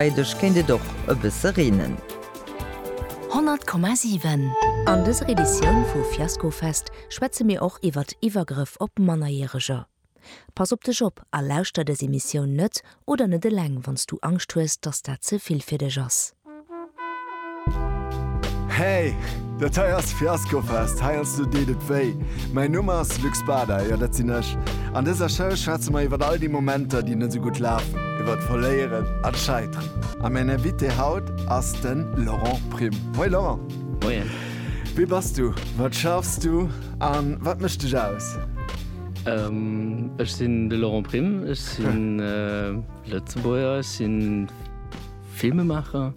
Freideg kéint et och e bësse reenen. 100,7. An dëser Editioun vu Fiaskofest schwätze mir och iwwert Iwwergrëff op Mannerjäreger. Pass op dech op a lauschter dës Emissioun net oder net eleng wann s du Angscht hues, dass dat ze vill fir dech ass. Hey! Dat hei ass Fiaskofest, hei als do deet et wéi. Mäin Numm ass Luc Spada, jo dat sinn ech. An dëser Show schwätze mer iwwert all déi Momenter, déi net esou gutt lafen, iwwert d'Verléieren an d'Scheiteren. A mäin Invité haut ass de Laurent Prim. Moien Laurent! Moien! Wie bass du, wat schaffs du a wat mécht dech aus? Ech sinn de Laurent Prim, ech si Lëtzebuerger, ech si Filmemaacher.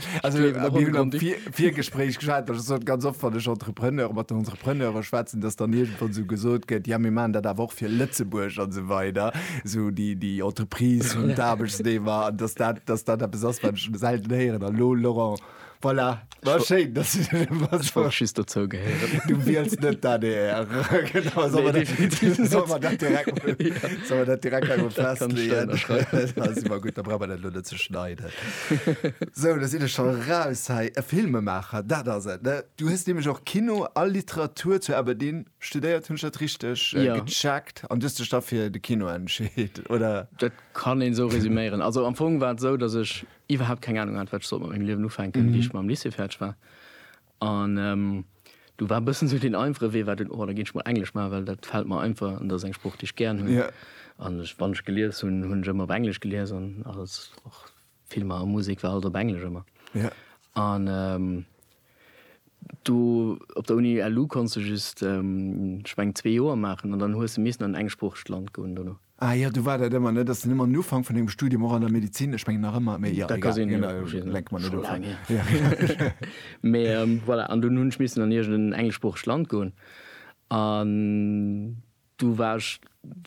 Also, mir hunn am Virgespréich geschwat, dass so ganz oft wann ech Entrepreneur mat den Entrepreneure schwätzen, dass dann irgendwann so gesot gëtt, ja mir man dat awer och fir Lëtzebuerg an so weider, so déi déi Entreprise hunn d'Aarbechtsnehmer an dass dat dass dat eppes ass wat ech selten héieren an lo Laurent voilà war schéin dass du dat emol Ech wollt just dozou gehéieren. Du wiels net d'ADR. Genau, soll man Nee, dat- definitiv net. soll man dat direkt- soll man dat direkt einmal Dat kann ich da festlegen? unterschreiben. Dat ass immer gut, da brauch man dat lo net ze schneiden. Sou, do sinn ech scho raus hei. E Filmemaacher, dat ass et, ne? Du hues nämlech och Kino a Literatur zu Aberdeen studéiert, hunn ech dat richteg gecheckt? An du hues dech da fir de Kino entscheet, oder? Dat kann een esou resuméieren. Also am Fong war et esou, datt ech iwwerhaapt keng Anung hat, wat ech sollt mat mengem Liewen ufänken, wéi ech mam Lycée fäerdeg war. An do war e bëssen esou deen einfache Wee war den, oh da ginn ech mol Englesch maachen, well dat fält mer einfach an dat ass eng Sprooch, déi ech gären hunn. An ech, wann ech gelies hunn, hunn ech ëmmer op Englesch gelies an alles, och Filmer a Musek war alles op Englesch ëmmer. An do op der Uni LU konntst de just, ech mengen, zwee Joer maachen an dann hues de missen an en engsproochegt Land goen dono. Ah jo, du war dat ëmmer, ne? Dass den ëmmer um Ufank vun engem Studium, och an der Medezin, ech mengen nach ëmmer, mee jo, egal, lenke mer net of. Mee voilà, an dunn hunn ech missen an iergendeen engleschsproochegt Land goen an du war ech,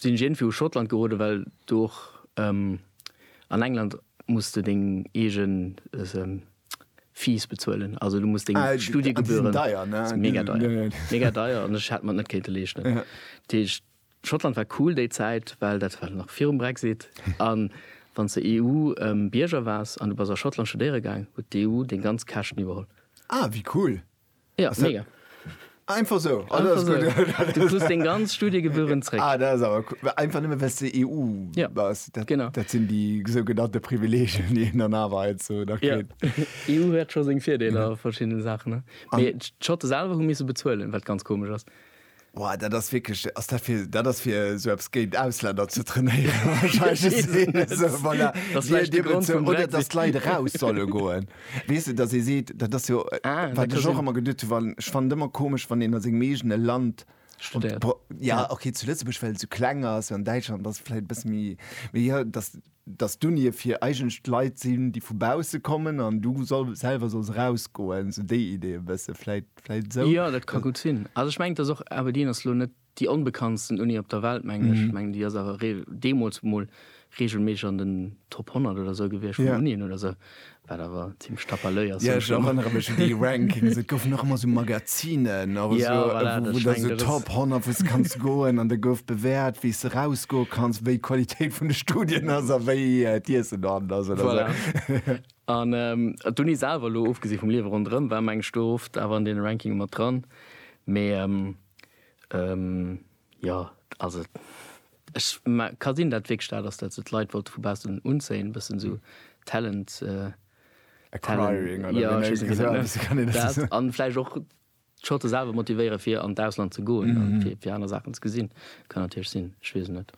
sinn ech iergendwéi u Schottland geroden, well do och an England muss de deng eege Fees bezuelen, also du muss deng Studiegebühren. Ah, déi sinn deier, ne? Mega deier, mega deier an ech hätt mer net kéinte leeschten. Dat heescht, Schottland war cool déi Zäit, well dat war nach virum Brexit. A wann s de EU-Bierger waars an du bass a Schottland studéiere gaang, huet d'EU deng ganz Käschten iwwerholl. Ah, wéi cool! Ja, mega. Einfach esou? Ah, dat ass gutt. Einfach esou. Du krus deng ganz Studiegebühren zréck. Ah, dat ass awer cool. Einfach nëmme well s de EU bass? Ja, genau. Dat sinn déi sougenannte Privilegien, déi een dann awer heizou nach kritt. Jo, EU huet scho seng Virdeeler a verschiddene Saachen, ne? Mee d'Schotte selwer hu misse bezuelen, wat ganz komesch ass. Boah, dat ass wierklech, ass dat fir, dat ass fir sou eppes géint Ausländer ze trainéieren wahrscheinlech. Et ass een esou, voilà, Dat ass dir, vläicht de dir Grond bezou, vum oder dass Brexit. d'Leit eraus solle goen. Weess de, dass ee seet, dat ass jo, Ah, dat wat ka ech och sinn. ëmmer geduet hu wann, ech fannen et ëmmer komesch, wann een a sengem eegene Land Studéiert. pro- Ja, Ja. okay, zu Lëtzebuerg, well et sou kleng ass, an Däitschland ass et vläicht e bësse méi, mee jo, dass dass d'Unie fir eigentlech Leit sinn, déi vu bausse kommen an du soll, selwer solls erausgoen, esou déi Idee e bësse vläit, vläit esou. Jo, dat ka gutt sinn. Also ech mengen, et ass och, Aberdeen ass elo net déi onbekanntsten Uni op der Welt, mengen ech. Ech mengen, déi ass awer reel, deemools emol, reegelméisseg an den Top 100 oder esou gewiescht vun Unien oder esou. Wat awer zimlech stapperlöi ass. Ja, ech erënnere mech un déi Rankings. Et goufen och ëmmer sou Magazinen oder sou, wou da sou Top 100, wou s de kanns goen an da gouf bewäert, wéi s de erausgoe kanns, wéi d'Qualitéit vun de Studien ass a wéi d'Iessen dohannen ass oder sou. An d'Uni selwer, elo ofgesi vum Liewe ronderëm, war mengen ech do oft awer an deene Rankinge mat dran. Mee. Jo, also ech ka sinn dat wierklech dat ass dat se d'Leit wollte vu baussen unzéien, e bëssen esou Talent Acquiring oder wéi een dat nennt. An vläicht och d'Schotte selwer motivéiere fir an d'Ausland ze goen, fir aner Saachen ze gesinn. Kann natierlech sinn, ech weess et net.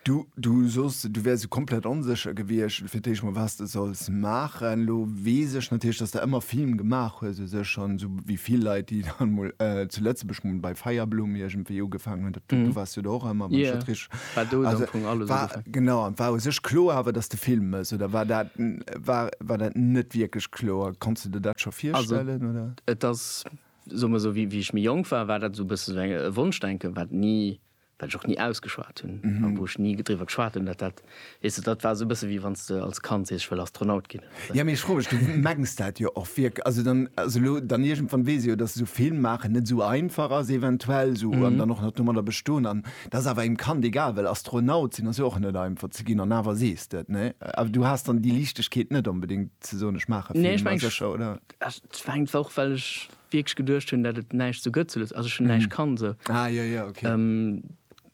Du, du soss, du wäers sou komplett onsécher gewiescht fir d'éischt mol, was de solls maachen. Elo weess ech natierlech, dass de ëmmer Film gemaach hues u sech an esou wéi vill Leit, déi dann mol zu Lëtzebuerg mol bei Feierblumm iergendwéi ugefaangen hunn, dat, du waars jo do och ëmmer, wann ech dat richteg, also wa, genau, an war u sech kloer awer, dass de Film méchs oder war dat, war, war dat net wierklech kloer? Konns de der dat scho virstellen oder? Et ass, soe mer esou, wéi ech méi jonk war, war dat esou e bësse esou e Wonschdenken, wat ni wat ech och ni ausgeschwat hunn a wou ech ni driwwer geschwat hunn, dat dat, weess de, dat war esou e bësse wéi wann s de als Kand sees, ech wëll Astronaut ginn. Jo, mee ech froe mech, du mengs dat jo och wierk-, also dann, also elo dann iergendwann weess ech jo, dass esou Film maachen net esou einfach ass eventuell esou an dann och nach domadder bestoen an et ass awer engem Kand egal, well Astronaut sinn ass jo och net einfach ze ginn an awer sees de et, ne? Awer du has dann déi Liichtegkeet net onbedéngt ze soen, ech maache Film, ma sécher, oder? Nee, ech mengen, et war och, well ech wierklech geduecht hunn dat et näischt sou gëtt zu Lëtz also ech hunn näischt kann sou Ah jo jo ok.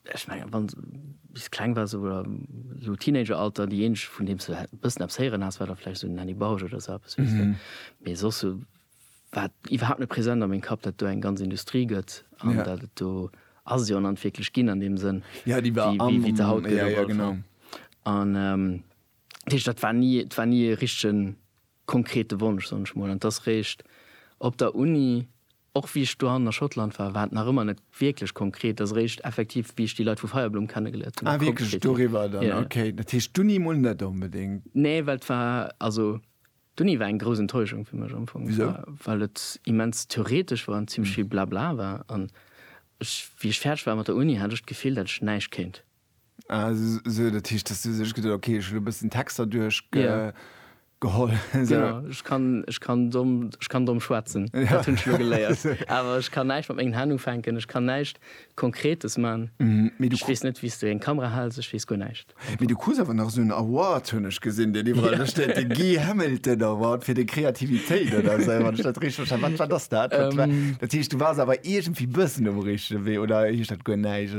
Ech mengen wann s bis kleng wars sou oder sou Teenager Alter déi eeneg vun deem s du bëssen eppes héieren has war da vläicht sou den Henny Bausch oder sou eppes weess de mee soss sou war et iwwerhaapt net present a meng Kapp dat do eng ganz Industrie gëtt an dat et do ass et jo an an wierklech ginn an deem Sënn Ja déi war am wéi se haut gëtt op alle Fall an dat heescht dat war ni et war ni e richtegen konkrete Wonsch, soen ech mol, an dass réischt op der Uni, och wéi ech dohannen a Schottland war, war et nach ëmmer net wierklech konkret, dass réischt effektiv wéi ech déi Leit vu Feierblom kennegeléiert hunn, da konkret ginn. Ah wierklech doriwwer dann? Yeah. Okay, dat heescht d'Uni mol net onbedéngt. Nee, well et war, also d'Uni war eng grouss Enttäuschung fir mech am Fong. Wisou? Well et immens theoretesch war an zimmlech vill Blabla war, an ech, wéi ech fäerdeg war mat der Uni, hat ech d'Gefill, dat ech näischt kéint. Also dat heescht, dass du sech geduet, okay, ech hu lo e bëssen Texter duerchgeholl. Genau, ech kann, ech kann domm, ech kann domm schwätzen, dat hunn ech lo geléiert. Awer ech kann näischt mat mengen Hänn ufänken, ech kann näischt Konkretes man. Ech weess net, wéi s du eng Kamera hals, ech weess guer näischt. Mee du krus awer nach esou en Award, hunn ech gesinn, deen iwwerall do steet, de Guy Hamilton Award fir deng Kreativitéit oder esou, wann ech dat richteg verstane hunn. Wat ass dat? Dat heescht, du waars awer iergendwéi e bëssen um richtege Wee oder heescht dat guer näischt?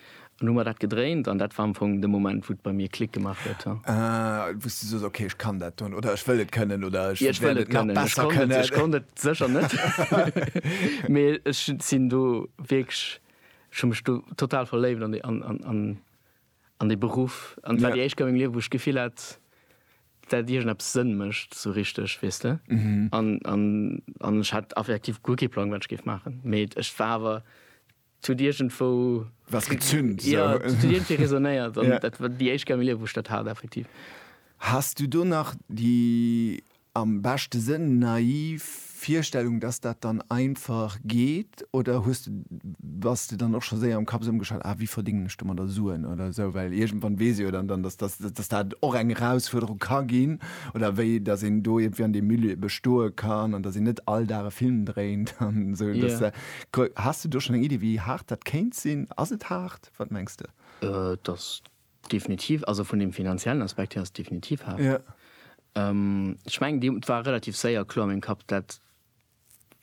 An hu mer dat gedréint an dat war am Fong de Moment wou et bei mir Klick gemaach huet. Ah, wou s du soss, okay, ech kann dat dann oder ech wëll et kënnen oder ech wäert et nach besser kënnen. Ech konnt et sécher net, mee ech sinn do wierklech, ech hu mech do total verléift an dee Beruff an et war déi éischt Kéier a mengem Liewen, wou ech d'Gefill hat, dat iergendeppes Sënn mécht esou richteg, weess de. An ech hat effektiv guer kee Plang, wat ech géif maachen, mee et war awer Zu huet iergendwou. Was gezünt. Jo, et huet iergendwéi resonéiert. An dat war déi éischt Kéier am Liewen, wou ech dat hat, effektiv. Has du do nach déi, am beschte Sënn, naiv Virstellung, dass dat dann einfach geet? Oder hues de, bass de dann och scho séier am Kapp esou ëmgeschalt, ah, wéi verdéngen ech domadder Suen oder esou? Well iergendwann weess ee jo dann, dann, dass dat och eng Erausfuerderung ka ginn. Oder wéi, dass een do iergendwéi an deem Milieu bestoe kann an dass een net all Dag e Film dréint an esou. Dass. Has de do schon eng Iddi wéi haart dat kéint sinn? Ass et haart? Wat mengs de? Et ass definitiv, also vun dem finanziellen Aspekt hier ass et definitiv haart. Ech mengen déi, et war relativ séier kloer a mengem Kapp dat,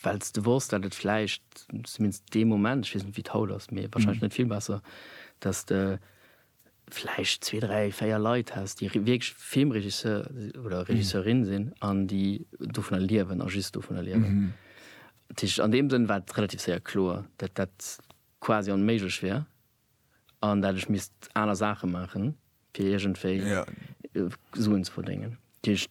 well s de wosst dat et vläicht, zumindest dee Moment, ech weess net wéi et haut ass, mee wahrscheinlech net vill besser, dass de vläicht zwee, dräi, véier Leit häss, déi wierklech Filmregisseur oder Regisseurin sinn an déi dovunner liewen a just dovunner liewen. Dat heescht, an deem Sënn war et relativ séier kloer, datt dat quasi onméiglech wär an dat ech misst aner Saache maachen, fir iergendwéi Suen ze verdéngen. Dat heescht,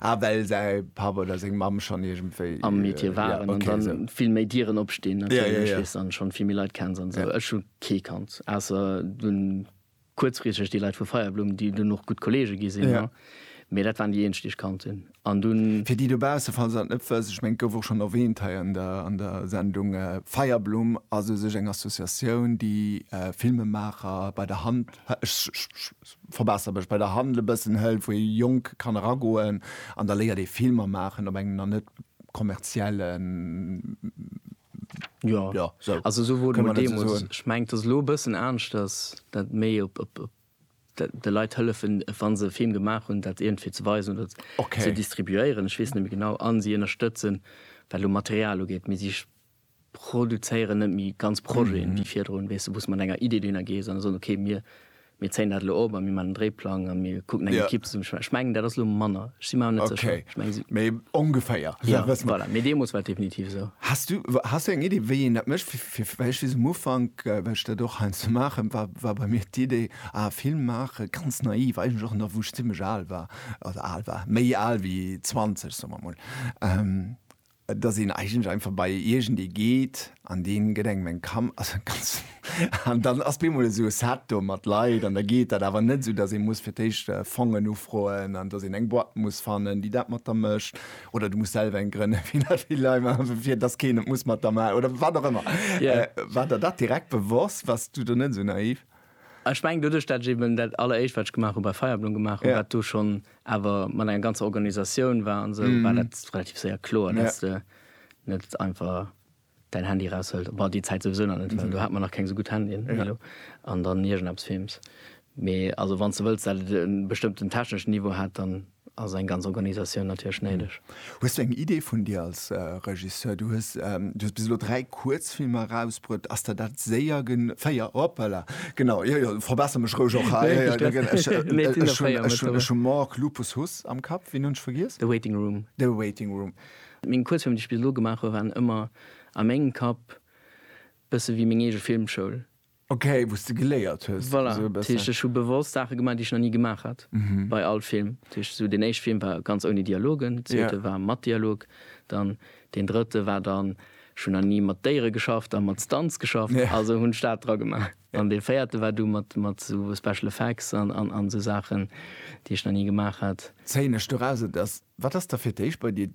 Ah, well säi Papp oder seng Mamm schonn iergendwéi. Am Metier waren an da vill méi Dieren opstinn natierlech, weess, an schonn vill méi Leit kenns an esou. Ech hu kee kannt, ausser dunn kuerzfristeg déi Leit vu Feierblumm, déi dunn och gutt Kollege gi sinn, mee dat waren déi eenzeg, déi ech kannt hunn an dunn. Fir déi dobausse, falls se dat net wëss, ech mengen, et gouf och schonn erwähnt hei an der an der Sendung, Feierblumm ass u sech eng Associatioun, déi Filmemaacher bei der Hand, ech Verbesser mech bei der Hand e bëssen, hëlt wou ee jonk kann eragoen an da léiert ee Filmer maachen op engem nach net kommerziellen. Jo, also esou wor et mol deemols. Ech mengen et ass elo e bëssen aaneschters, dat méi op de Leit hëllefen wann se e Film gemaach hunn dat iergendwéi ze weisen oder ze distribuéieren, ech weess net méi genau, an si ënnerstëtzen wat elo Material ugeet, mee si produzéieren net méi ganz Projeten wéi virdrun, weess de, wou s de mat enger Idee dohinner gees an da soen, okay, mir zéien dat elo op a mir maachen en Dréiplang a mir kucken eng Ekipp zesummen ze stellen. Ech mengen, dat ass elo manner, ech si mer awer net sécher. Ech mengen, si. Mee ongeféier. Jo, voilà, mee deemools war et definitiv esou. Has du, has du eng Idee, wéi een dat mécht? Fir, well ech weess, um Ufank, well ech dat och heiansdo maachen, war, war bei mir d'Idee, ah, Film maachen, ganz naiv, eigentlech och nach wou ech zimmlech al war, also al war, méi al wéi 20, soe mer emol, dass een eigentlech einfach bei iergendee geet an dee gëtt engem eng Kam also ganz an dann ass bemol esou e Set do mat Leit an da geet dat awer net esou, dass ee muss fir d'éischt Fongen ufroen an dass een eng Boîte muss fannen, déi dat mat der mécht oder du muss selwer eng grënnen, fir dat vill Leit maachen, fir dass keen et muss mat der maachen oder wat och ëmmer. War der dat direkt bewosst? Waars du do net esou naiv? Ech mengen doduerch dat ech eben dat alleréischt wat ech gemaach hu bei Feierblumm gemaach hu wat do schonn awer mat enger ganzer Organisatioun war an esou war dat relativ séier kloer dass de net einfach däin Handy eraushuels, bon déi Zäit souwisou nach net well do hat mer nach keng esou gutt Handyen wéi elo, an dann iergendeppes films. Mee also wann s de wëlls dat et e bestëmmten techneschen Niveau hat dann. Ass eng ganz Organisatioun natierlech néideg. Hues du eng Idee vun dir als Regisseur? Du hues bis elo dräi Kuerzfilmer erausbruet. Ass der dat séier gen. Véier, hoppala, genau, jo jo, verbesser mech roueg och hei. Ech hunn Mork, Lupus, Huss am Kapp. Ween hunn ech vergiess? The Waiting Room. The Waiting Room. Meng Kuerzfilmer, déi ech bis elo gemaach hu waren ëmmer a mengem Kapp bësse wéi meng eege Filmschoul. Ok, wou s de geléiert hues. Voilà, dat heescht ech hu bewosst Saache gemaach, déi ech nach ni gemaach hat bei all Film. Dat heescht esou deen éischte Film war ganz ouni Dialogen, deen zweete war mat Dialog, dann deen drëtte war dann, ech hunn nach ni mat Déiere geschafft a mat Stunts geschafft, also hunn ech dat dra gemaach. An dee véierte war du mat esou Special Effects an esou Saachen, déi ech nach ni gemaach hat. Zéien ech doraus, et ass, wat ass da fir d'éischt bei dir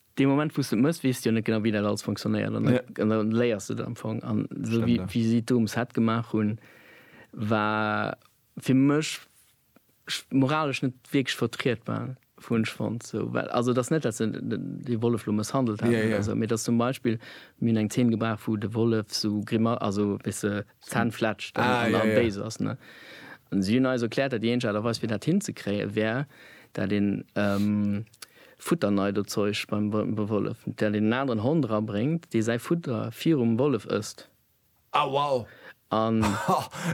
Dee Moment wou s de et mëss, weess de jo net genau wéi dat alles fonctionnéiert an da léiers de et am Fong. An esou wéi si d'Dooms het gemaach hunn, war fir mech moralesch net wierklech vertrietbar, hunn ech fonnt. Esou well also et ass net dat se dee Wollef lo mësshandelt hätten oder esou, mee et ass zum Beispill, mir hunn eng Zeen gebraucht wou de Wollef esou Grima, also wéi s de Zänn fletscht an da béis ass. An si hunn eis erkläert, dat déi eenzeg Aart a Weis fir dat hinzekréien, wär dat een Futterneidozeuch beim Wollef, dat een en aneren Hond rabréngt, dee säi Futter virum Wollef ësst. Ah wow! An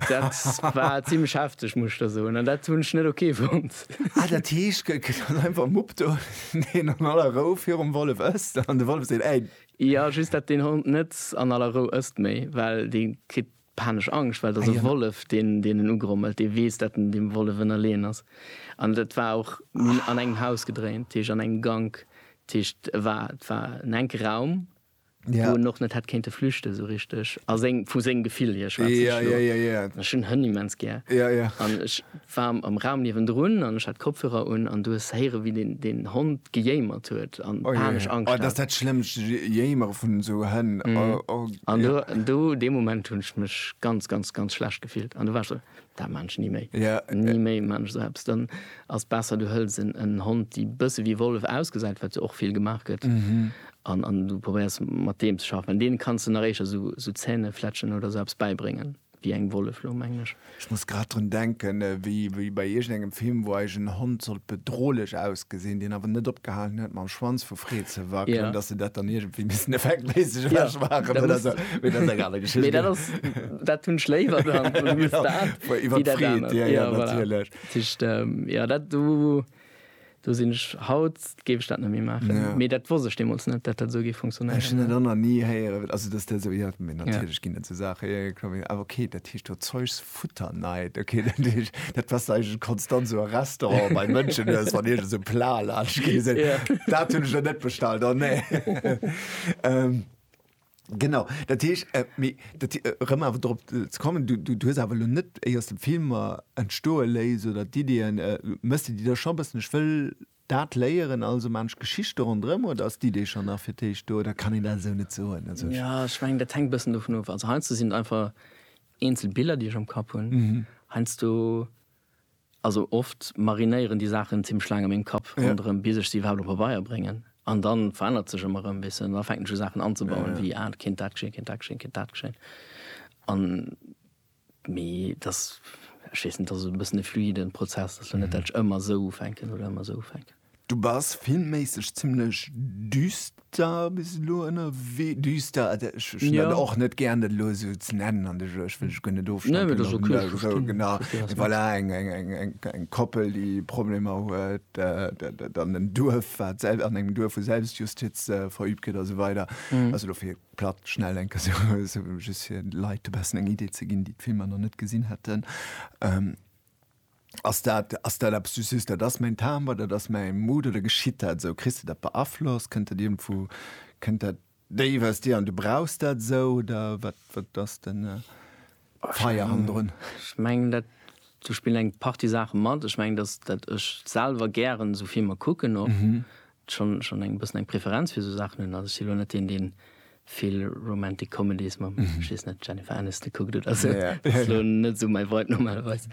dat war zimlech hefteg, muss ech der soen. An dat hunn ech net ok fonnt. Ah dat heescht, gëtt dann einfach e Mupp do, deen an aller Rou virum Wollef ësst an de Wollef seet, Ey! Jo just dat deen Hond net an aller Rou ësst méi, well dee kritt panesch Angscht, well et ass e Wollef deen deen en ugrommelt, dee weess dat en deem Wollef ënnerleeën ass. An dat war och, mir hunn an engem Haus gedréint, dat heescht an engem Gank, dat heescht e war, et war en enke Raum wou en och net hätt kéinte flüchte sou richteg, a seng, vu sengem Gefill hier schwätze ech elo, an ech hunn Hënn immens gär an ech. war am Raum niewendrun an ech hat Kopfhörer un an du hues héiere wéi deen deen Hond gejéimert huet an panesch Angscht hat. Oh jee, oh dat ass dat schlëmmst, Jéimere vun esou Hënn, oh, oh. An do, do dee Moment hunn ech mech ganz, ganz, ganz schlecht gefillt an do war ech esou, dat maan ech ni méi, ni méi maan ech esou eppes. Dann ass besser du hëls en en Hond déi bësse wéi Wollef ausgesäit, wat jo och vill gemaach gëtt, an an du probéiers mat deem ze schaffen, well deene kanns de nach éischer esou esou Zähnefletschen oder esou eppes bäibréngen. Wéi eng Wolle floung, mengen ech. Ech muss grad drun denken, wéi bei iergend engem Film, wou eis en Hond sollt bedrohlech ausgesinn, deen awer net opgehalen huet mam Schwanz vu Freed ze wackelen, dass se dat dann iergendwéi missen effektméisseg ewech maachen oder esou. Mee dat ass eng aner Geschicht. Mee dat ass, dat hunn ech léiwer dann, wéi dat anert, wéi dat anert. Iwwer d'Freed, jo, jo, natierlech. Dat heescht, jo, dat do, Do sinn ech. Haut géif ech dat net méi maachen. Ja. Mee dat wosst ech deemools net, datt dat esou géif funktionéieren. Ech hunn dat och nach ni héieren, also datt de esou, jo, mee Ja. natierlech ginn et esou Saachen, jo, jo, kloer, awer okay, dat heescht do Zeus futter night, okay, dat heescht, dat was du eigentlech konstant esou a Restaurant bei Mënschen hues, wann iergend esou e Plat laanscht geet, Ja. dat hunn ech der net bestallt, oh nee. Ähm. Genau, dat heesch, äh, mee, dat, äh, rëm awer drop äh, ze kommen, du, du, du hues awer lo net éiers dem Filmer entstoe léis oder d'Ideeën, äh, méchs de déi da scho bëssen, ech wëll dat léieren, also man ech Geschichte ronderëm, oder ass d'Idee schonn nach fir d'éischt do, oder kann een dat esou net soen? Also ech. Ja, ech mengen, dat hänkt bëssen dovun of. Also heiansdo sinn et einfach eenzel Biller, déi ech am Kapp hunn. Heiansdo Also oft marinéieren déi Saachen zimmlech laang an mengem Kapp ronderëm, bis ech se iwwerhaapt op Pabeier bréngen. An da verännert sech ëmmer erëm e bëssen. An da fänken ech u Saachen anzebauen, wéi, ah, et kéint dat geschéien, et kéint dat geschéien, et kéint dat geschéien. An, mee et ass, ech weess net, et ass e bëssen e fluiden Prozess. Et ass jo net, dat ech ëmmer esou ufänken oder ëmmer esou ufänken. Du bass filmméisseg zimlech düster bis elo ënnerwee. Düster, also ech hunn dat Ja. och net gären, dat elo esou ze nennen an de Jeux. Ech wëll dech guer net Nee, ofstempelen. mee dat ass okay, ech verstinn, ech verstinn, wat du mengst. Voilà, eng, eng, eng, eng, eng Koppel, déi Problemer huet, dat, dat an en Duerf, wat selw-, an engem Duerf, wou Selbstjustiz verübt gëtt a sou weider. Also elo fir platt, schnell eng Kéier esou, esou just fir de Leit e bessen eng Idee ze ginn, déi d'Filmer nach net gesinn hätten. Ass dat, ass dat eppes, du sees, dat ass mäin Timbre, dat ass mäi Mood, oder geschitt dat esou? Kriss de dat beaflosst? Kënnt dat iergendwou, kënnt dat déif aus dir an du brauchs dat esou, oder wat, wat ass den Feier hannendrun? Ech mengen dat, do spillen eng Partie Saache mat. Ech mengen, datt ech selwer gären esou Filmer kucken och. schonn schonn eng bëssen eng Preferenz fir esou Saachen hunn. Also ech si lo net deen, deen vill Romantic Comedies, mam ech weess net, Jennifer Aniston kuckt oder esou. Ja, ja. Ass lo net sou mäi Vibe normalerweis.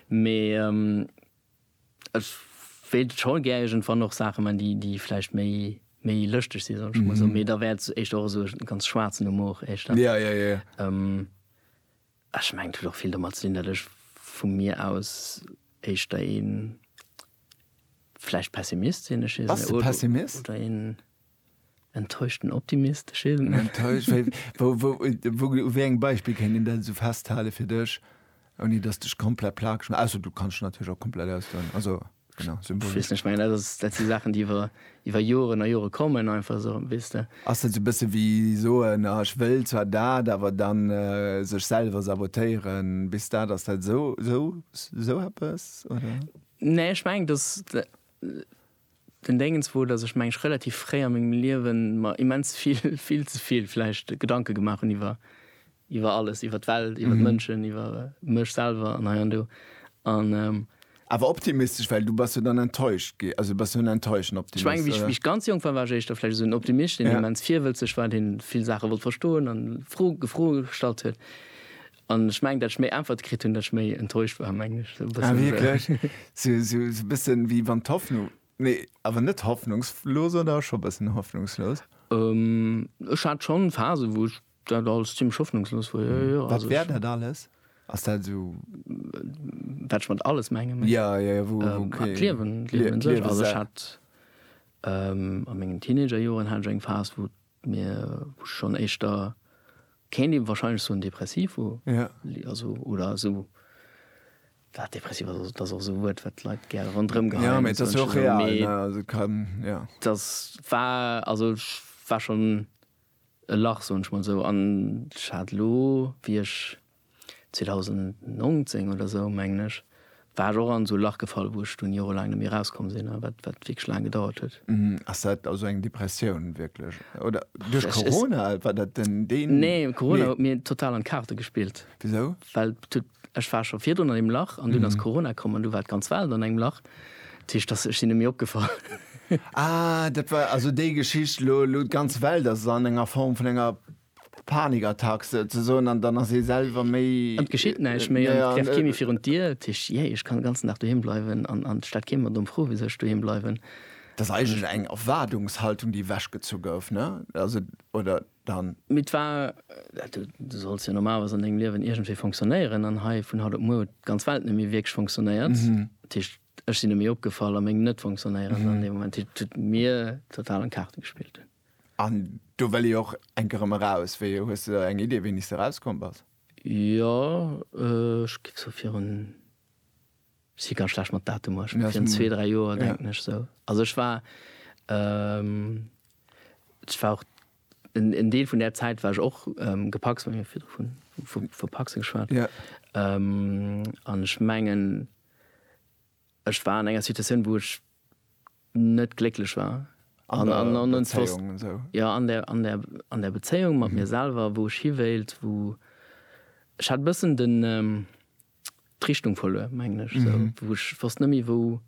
Mee ech wéilt scho gär iergendwann och Saache man, déi déi vläicht méi méi lëschteg si soll ech mol soen. Mee da wär et éischter och esou e ganz schwaarzen Humor éischter. Ja, ja, ja. Ech mengen et huet och vill domat ze dinn, datt ech vu mir aus éischter ee vläicht Pessimist sinn. Ech weess net. Pessimist? Oder een enttäuschten Optimist. Ech weess et net. Enttäuscht? Wéi, wou, wou, wou, u wéi engem Beispill kéint een dat esou festhalen fir dech, ouni datt s de dech komplett plakeg maass? Ausser du kanns dech natierlech och komplett ausdoen. Also. Genau, symbolisch. Wees nech, mengen dat ass, dat si Saachen déi iwwer iwwer Joren a Jore kommen einfach esou, weess de. Ass dat esou e bësse wéi soen, ah ech wëll zwar dat, awer dann sech selwer sabotéieren, bis dat ass dat esou esou esou eppes oder? Nee, ech mengen dass den Déngens wor, dass ech mengen ech relativ fréi a mengem Liewen mer immens vill, vill ze vill vläicht Gedanke gemaach hunn iwwer Iwwer alles, iwwer d'Welt, iwwer d'Mënschen, iwwer mech selwer an hei an do. An. Awer optimistesch, well du bass jo dann enttäuscht gi, also du bass jo en enttäuschten Optimist, oder? Ech menge, wéi ech ganz jonk war, war ech éischter vläicht esou en Optimist, deen immens virwëlzeg war, dee vill Saache wollt verstoen an Fro, Froe gestallt huet. An ech mengen, datt ech méi Äntwerte kritt hunn, datt ech méi enttäuscht war, mengen ech. Ah, wierklech? Sou e bëssen, wéi wann d'Hoffnung, nee, awer net hoffnungslos, oder scho e bëssen hoffnungslos? Ech hat schonn Phasen, wou ech. Dat alles zimlech hoffnungslos wor, jo, jo. Wat wär dat alles? Ass dat esou. Wat ech mat alles mengen, mengst du? Jo, jo, jo, wou, wou kee. D'Liewen, d'Liewen un sech. D'Liewen Also ech selwer. hat a mengen Teenagerjoren hat ech eng Phas, wou mir, wou ech schonn éischter, kéint ee wahrscheinlech soen, depressiv wor. Ja. Li, also, oder esou, wat depressiv ass, ass, dat ass och esou e Wuert, wat d'Leit gäre ronderëm geheien. Ja, mee et ass jo och real, ne? Also et kann, ja. Dat war, also ech war schonn. e Lach, soen ech mol esou, an ech hat elo, wéi ech 2019 oder esou, mengen ech, war ech och an esou e Lach gefall, wou ech dunn jorelaang net méi erauskomm sinn a wat wierklech laang gedauert huet. Ass dat also eng Depressioun wierklech oder duerch Corona? War dat den? Nee, Corona huet mir total an d'Kaarte gespillt. Wisou? Well et huet Ech war scho virdrun an deem Lach an dunn ass Corona komm an du war et ganz Welt an engem Lach. Dat heescht, dass, ech sinn net méi opgefall. Ah, dat war also déi Geschicht, elo, elo d'ganz Welt ass an enger Form vun enger Panikattack souzesoen an dann ass ee selwer méi. An et geschitt näischt méi an et trefft kee méi virun d'Dier. Dat heescht, jee, ech kann den ganzen Dag doheem bleiwen an et stellt kee mer domm Fro, wisou ech doheem bleiwen. Dat ass eigentlech eng Erwaardungshaltung, déi ewechgezu gouf, ne? Also, oder? dann. Mee 't war, du solls jo normalerweis an dengem Liewen iergendwéi fonctionnéieren, an hei vun haut op muer huet d'ganz Welt net méi wierklech fonctionnéiert. Dat heescht, ech sinn net méi opgefall a meng Net-Fonctionnéieren an deem Moment, dat heescht, huet mir total an d'Kaarte gespillt. An do wëll ee jo och enk erëm eraus. Wéi, hues de eng Idee, wéini s de erauskomm bass? Jo, ech géif sou virun. Ech si ganz schlecht mat Datumer, ech war virun zwee, dräi Joer, denken ech sou. Also ech war, ech war och, en Deel vun där Zäit war ech och gepacst, mir hu jo virdru vu Pacse geschwat. An ech mengen, ech war an enger Situatioun, wou ech net glécklech war. An der Bezéiung an esou? Jo, an der Bezéiung, mat mir selwer, wou ech hiwéilt, wou, ech hat e bëssen den, d'Richtung verluer mengen ech sou mhm. wou ech fast nëmi wou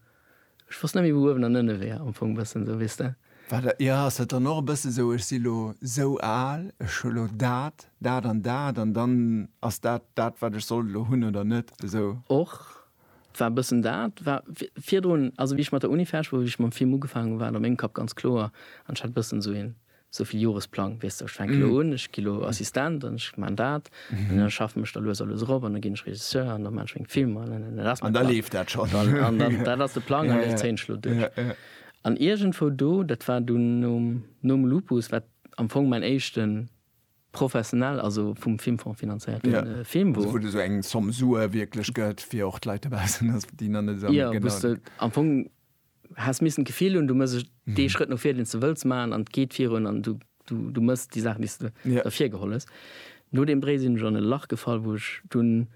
ech fast nëmi wou uewen an ënne wär am Fong bëssen sou wisst der Warte, ja ass dat dann och e bësse sou ech si lo sou al ech hu lo dat dat an dat an dann ass dat dat wat ech soll lo hunn oder net esou och war bëssen dat war virdrun also wie ich mat der Uni ferch wou ich mam Film ugefaangen war an mengem Kapp ganz kloer an hat bëssen sou een Esou vill Joresplang, weess de, ech fänke lo un, ech gi lo Assistent an ech maan dat an da schaffen ech da lues a lues erop an da ginn ech Regisseur an da maan ech meng Filmer an da dat ass mäin Plang. An da leeft dat schonn. Dat ass de Plang an dee zéien ech lo duerch. An iergendwou do, dat war dunn nom Lupus, wat am Fong mäin éischte professionell, also vum Filmfong finanzéierte Film wor. Also wou de sou eng Somme Sue wierklech gëtt, fir och d'Leit dobaussen, déi nach net esou genau. Jo, wou s de am Fong Häss missen d'Gefill hunn, du mëss dee Schrëtt no vir, deen s de wëlls maachen, an et geet virun, an du mëss déi Saachen, déi s de ervir geholl hues. No deem Bréi sinn ech an e Lach gefall, wou ech dunn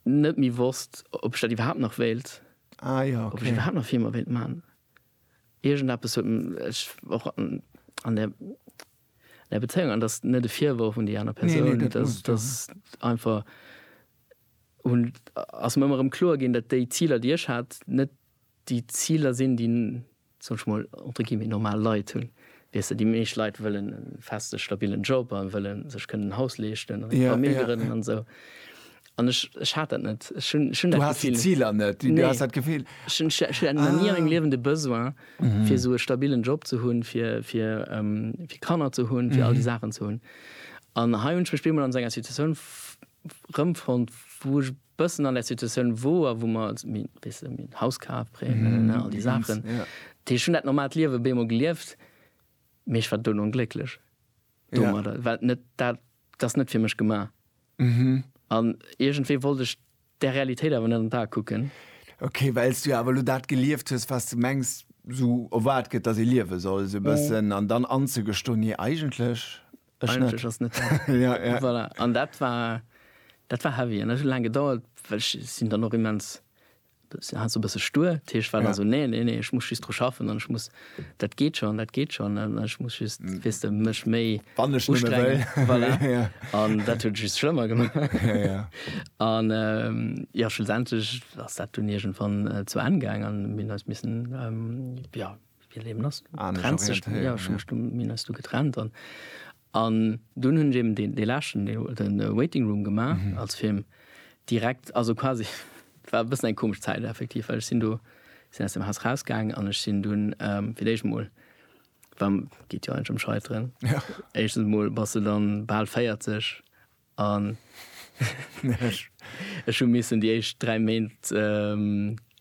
net méi wosst, ob ech dat iwwerhaapt nach wéilt, ob ech iwwerhaapt nach Filmer wéilt maachen. Iergendeppes huet ech och an der. Nei Bezéiung, an dat ass net e Virworf un déi aner Persoun, dat ass einfach, ass mir ëmmer erëm kloer ginn, datt déi Ziler, déi ech hat, net déi Ziler sinn, déi, soen ech mol, entre guillemets, normal Leit hunn. Weess de, déi meescht Leit wëllen e feste, stabilen Job a wëlle sech kënnen en Haus leeschten a vermilgeren an esou. An ech, ech hat dat net. Ech hunn, ech hunn Du dat haas déi Gefill. Ziler net, du Nee. haas dat Gefill. Ech hunn, ech ech hat ni a mengem Ah. Liewen de Besoin, fir esou e stabilen Job ze hunn, fir, fir, ähm, fir Kanner ze hunn, fir all déi Saachen ze hunn. An hei hunn ech mech bemol an esou enger Situatioun f- rëmfonnt, wou ech bëssen an där Situatioun woer, wou mer als mi, weess de, mir hunn Haus kaf, Prêt, ne, ne, ne, all déi Saachen. Ja. Ech hunn dat normaalt Liewe bemol gelieft, mee ech war dono onglécklech. domadder, yeah. well net dat ass net fir mech gemaach. Mhm. An iergendwéi wollt ech der Realitéit awer net an d'A kucken. Okay, wells du awer lo dat gelieft hues, was du mengs, sou erwaart gëtt, dass ee liewe soll, sou e bëssen, an dann anzegestoen, nee, eigentlech ech net. Eigentlech ass net dat. Ja, ja. Voilà. An dat war, dat war heavy. An dat huet laang gedauert, well ech sinn dann och immens Si hat esou e bësse stuer, dat heescht, war da esou, Nee, nee, nee, ech muss just dru schaffen an ech muss, dat geet schonn, dat geet schonn an ech muss just, weess de, mech méi ustrengen. Voilà. An dat huet et just schlëmmer gemaach. An jo, schlussendlech ass dat dunn iergendwann zu Enn gaang an mir hunn eis missen, jo, wéi d'Liewen ass, du trenns dech, jo, ech hu mech du, mir hunn eis du getrennt an, An dunn hunn ech eben dee, dee leschten, dee Waiting Room gemaach als Film direkt, also quasi, war e bëssen eng komesch Zäit effektiv, well ech sinn do, sinn aus dem Haus rausgaang an ech sinn dunn fir d'éischt emol, war, geet jo eigentlech ëm Scheiteren, éischtens emol bass du dann bal 40, An ech hu missen déi éischt 3 Méint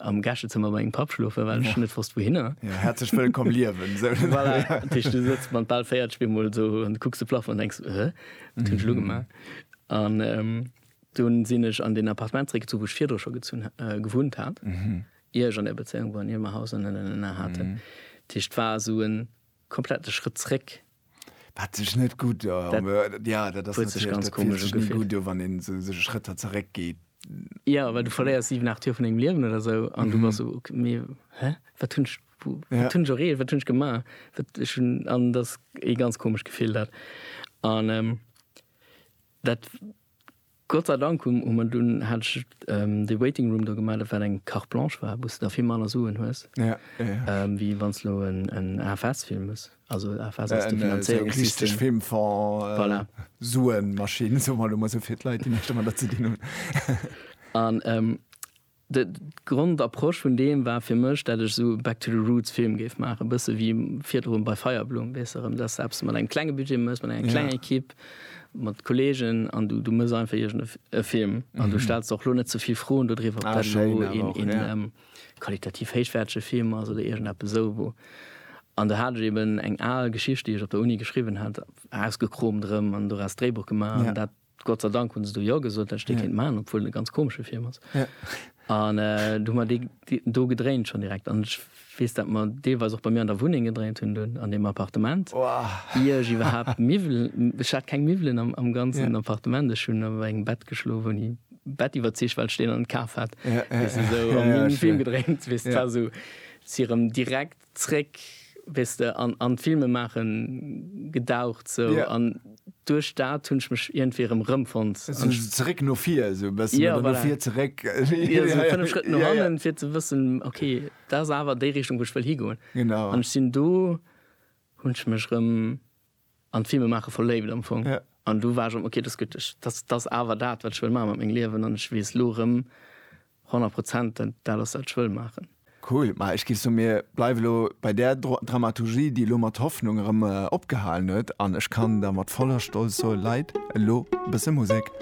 am Gäschezëmmer bei mengem Papp schlofen, well ech net wosst wouhinner. Jo, häerzlech wëllkomm liewen! Voilà, dat heescht, du sëtz mat bal 40 bemol esou an kucks de Plafong an denks, Hä, wat hunn ech elo gemaach? An dunn sinn ech an deen Appartement zréckgezunn, wou ech virdru scho gezunn, gewunnt hat, ier ech an där Bezéiung woren, ier mer Haus an, na, na, na, na haten. Dat heescht, et war esou en Komplette Schrëtt zréck. Wat sech net gutt do, wann een esou sech Schrëtter zeréck geet. Jo, well du verléiers 7, 8 Joer vun dengem Liewen oder esou an du bass esou, ok, mee hä, wat hunn ech, wat hunn ech erreecht, wat hunn ech gemaach? Wat ech hunn, an dat ass ee ganz komescht Gefill dat an. Dat Gott sei Dank hu mer dunn hat ech dee Waiting Room do gemaach, dat wat eng Carte Blanche war, wou s de da vill manner Suen hues, wéi wann s elo en AFS fillen muss. Also AFS ass de Finanzéierungssystem. Filmfonds, voilà. Suenmaschinn, soe mer elo mol esou fir d'Leit, déi näischt domadder ze dinn hunn. An D' Grondapproche vun deem war fir mech, dat ech esou Back to the Roots Film géif maachen, e bësse wéi virdrun bei Feierblumm, weess de, rëm dass de eppes mat engem klenge Budget méchs, mat enger klenger Equipe, mat Kolleegen an du du méchs einfach iergend e Film an du stells der och elo net ze vill Froen do driwwer, ob dat elo een qualitativ héichwäertege Film ass oder iergend eppes esou wou. An do hat ech eeben eng al Geschicht, déi ech op der Uni geschriwwen hat, ausgekromt erëm an doraus d'Dréibuch gemaach an dat Gott sei Dank hunn se do Jo gesot, dat ech dee kéint maachen, obwuel en e ganz komesche Film ass. An du hu mer dee do gedréint schonn direkt. An ech weess, dat mer deelweis och bei mir an der Wunneng gedréint hunn do an deem Appartement, ier ech iwwerhaapt Miwwelen, ech hat keng Miwwelen am ganzen Appartement, ech hunn op engem Bett geschlof, ouni e Bett iwwert d'Zich, well ech deen an kaf hat, weess de, esou, a mir hunn e Film gedréint, weess de, et war esou, si erëm direkt. Zréck, weess de, an an d'Filmemaache gedaucht sou. Yeah. An duerch dat hunn ech mech iergendwéi erëm rëmfonnt. Sou zeréck no vir esou e bëssen. Yeah, voilà. Oder no vir zeréck. Jo, esou fënnef Schrëtt no hannen, yeah, yeah. fir ze wëssen, okay, dat ass awer déi Richtung, wou ech wëll higoen. Genau. An ech sinn do, hunn ech mech erëm. an d'Filme maache verléift am Fong. Ja. An du war ech am, ok, dat ass gutt, ech, dat, dat ass awer dat, wat ech wëll maache mat mengem Liewen an ech weess elo erëm 100 Prozent, dat dat ass, wat ech wëll maachen. Cool. Ma ech géif soen, mir bleiwe lo bei där Dro Dramaturgie, déi elo mat Hoffnung erëm opgehalen huet. An ech kann da mat voller Stolz soe, Leit, elo e bësse Musek.